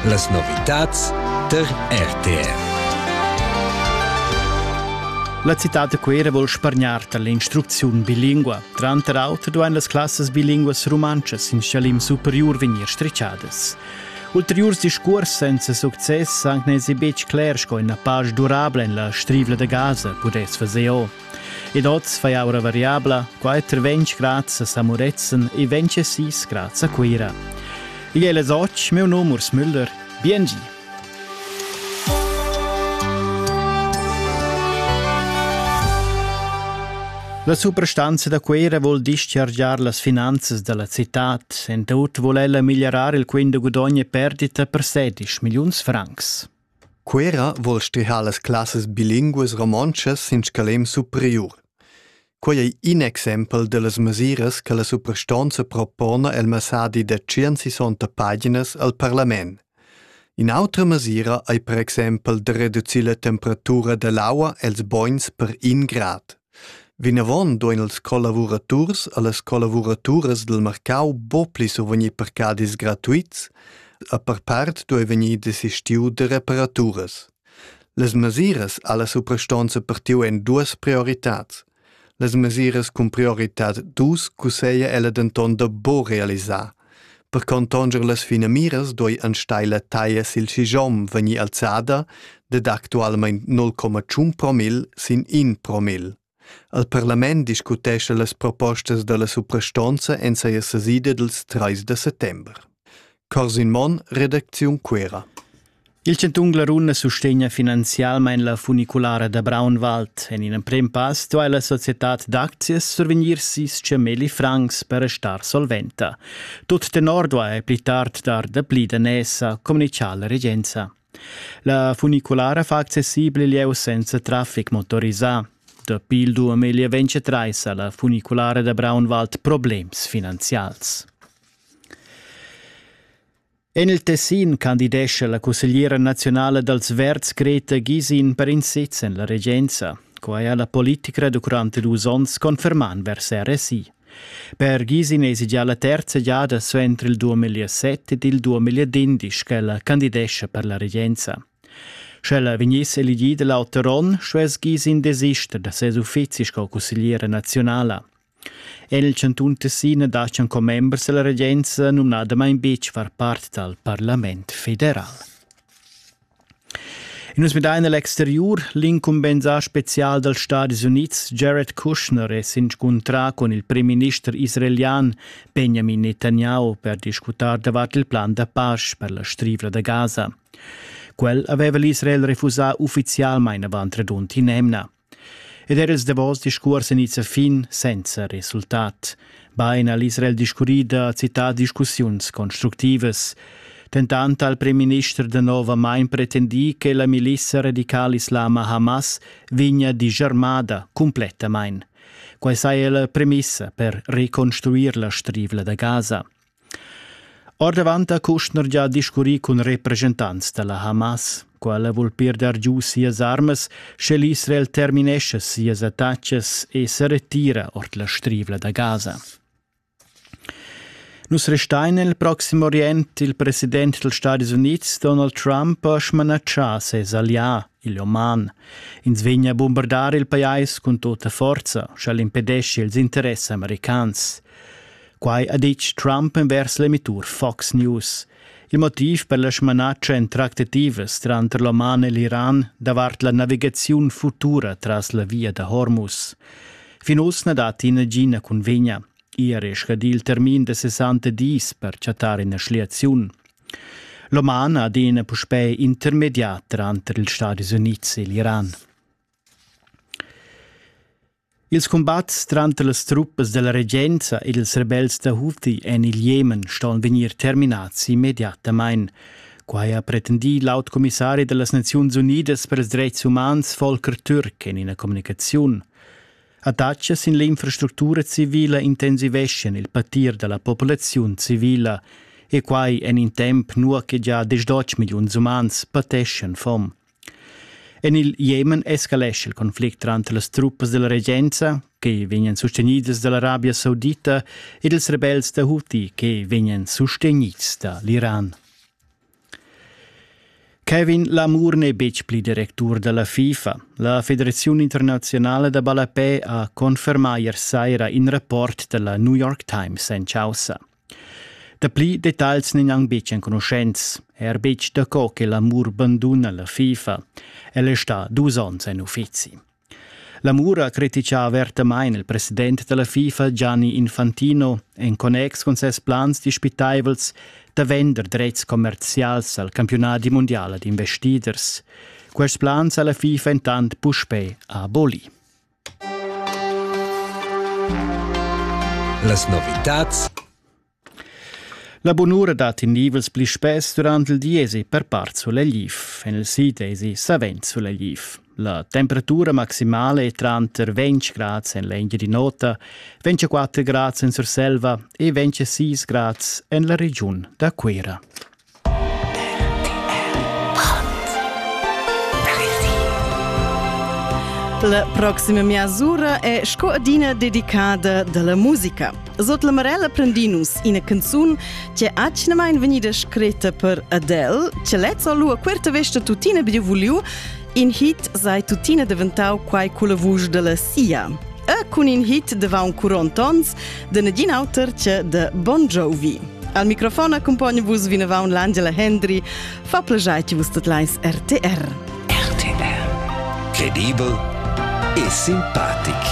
Las novitads tar RTR. La citad da Cuera vuol spargnar dall'instrucziun bilingua. Tranter auter duein las classas bilinguas rumantschas in schalim superiur vegnir stricciadas. Ulteriurs discuors senza success san nesi betg cler sco ina pasch durabla en la strivla da Gaza pudess fazer o. Ed oz fai aura variabla, qua è ter ventg grads a San Murezzan e ventg e sis grads a Cuira. Igl è les och, meu nom Urs Müller. Biengi! La suprastanza da Cuira vuol dischargiar las finanzas dalla citad. En tut vuol ella migliarar il quint da gudogn e perdita per 16 milliuns francs. Cuera vul stihar las classas bilinguas romontschas sin scalem superiur. Quei ei in exempel dallas mesiras che la suprastonza propona el messadi da tschient-sessanta paginas al parlament. In'autra mesira ei per exempel da reducir la temperatura dall'aua els bogns per in grad. Vinavon duein ils collavuraturs e las collavuraturas dil marcau buca pli survegnir parcadis gratuits, e per part duei vegnir desistiu da reparaturas. Las mesiras alla suprastonza partiu en duas prioritads. Las mesiras cun prioritad dus cusseglia ella denton da buca realisar, Per contonger las finamiras doi enstagl la taglia sil schigiom vegnir alzada ded actualmein 0,1 promil sin 1 promil. Al parlament discutescha las propostas dalla suprastonza en seia sesida dils 3 de settember. Corsin Monn, Redaktion Cuera. Il chantun Glaruna sustegna finanzialmain la funiculara da Braunwald. En in emprim pass duai la societad d'aczias survegnir sis cemeli francs per restar solventa. Tut tenor duai pli tard dar dapli daners, ha communitgà la regenza. La funiculara fa accessibel il lieu senza traffic motorisà. Dapi il 2023 ha la funiculara da Braunwald problems finanzials. En il Tessin candidescha la cussegliera naziunala dals Verds Greta Gisin per in sez en la regenza. Quai ha la politica durante dus onns confermà vers RSI. Per Gisin èsi già la terza giada suenter il 2007 ed il 2011 ch'ella candidescha per la regenza. Sch'ella vegniss elegida l'auter onn, stuess Gisin desister da ses uffizi sco cussegliera naziunala. En il chantun Tessina dastgan commembers dalla regenza numnadamain betg far part dal parlament federal. Nus midain l'exteriur. L'incumbensà spezial dals Stadis Unids Jared Kushner è s'inscuntrà cun il primminister israelian Benjamin Netanyahu per discutar davart il plan da pace per la Strivla da Gaza. Quel aveva l'Israel refusà uffizialmain avant redund in'emna. Ed er ils davos discuors en issa fin senza resultat. Bain ha l'Israel discurrì da citar discussiuns constructivas. Tentant ha il premierminister da novamain pretendì che la milissa radical-islama Hamas vegnia disarmada cumplettamain. Quai saja la premissa per reconstruir la strivla da Gaza. Ordavant ha Kushner gia discurrì cun represchentants da la Hamas. Quella vul pirdar giu sias armas, sche l'Israel terminescha sias attacas e sa retira ord la strivla da Gaza. Nus restein nel Proxim Orient. Il president dals Stati Unids Donald Trump ha smanatschà ses allià il Oman. Ins vegna a bombardar il pajais cun tutta forza, sch'el impedesci ils interess americans. Quai ha ditg Trump envers l'emittur Fox News. Il motiv per la smanatscha en tractativas tranter l'Oman e l'Iran davart la navigaziun futura tras la via da Hormuz. Fin uss na datti nagina cunvegna. Ieri è scadì il termin da 60 dis per chattar ina schliaziun. L'oman ha adina puspè intermedià tranter ils Stadis Unids e l'Iran. Ils cumbats tranter las truppas della regenza ed ils rebels da Houthi en il Jemen ston vegnir terminads immediatamain. Quai ha pretendì l'aut commissari da las Naziuns Unidas per ils dretgs umans Volker Türk en ina communicaziun. Attachia sin l'infrastructura civila intensiveschien il patir dalla populaziun civila e quai en in temp nua che già dus dotg milliuns umans pateschien fom. En il Jemen escalesce il conflict tranter las truppas della regenza, che vegnan sustenidas dall'Arabia Saudita, ed ils rebels da Houthi, che vegnan sustenids da l'Iran. Kevin Lamour n'è betg pli directur da la FIFA. La federaziun internaziunala da ballapè ha confermà ier saira in rapport da la New York Times en chaussa. Dapli detagls n'èn anc betg enconuschents, er betg daco che Lamour banduna la FIFA. El è stà dus onns en uffizi. La Mura critica avertamain il president da la FIFA Gianni Infantino en connex cun ses plans dispitaivels da vender dretgs commerzials al campiunadi mundial ad investiders. Quests plans ha la FIFA entant puspè abolì. Las novitads La bunura dat in nivels pli spess durant il diesi per part sulegliv. En il sid esi savens sulegliv. La temperatura maximala è tranter 20 grads en l'Engiadin'Ota, 24 grads en Surselva e 26 grads en la regiun da Cuira. La proxima measura è sco adina dedicada dalla musica. Sot la Marella Prendinus ina canzun che atgnamain vegnida scritta per Adele, che lezza lua querta vesta tutina biu vuliu, in hit sai tutina deventau quai culla vusch della sia. E cun in hit de va un curonton de negin auter che de Bon Jovi. Al microfon accumpogna vus vinavant l'Angela Hendry. Fa plegiai che vus tot leis RTR. RTR. Credibel e simpatic.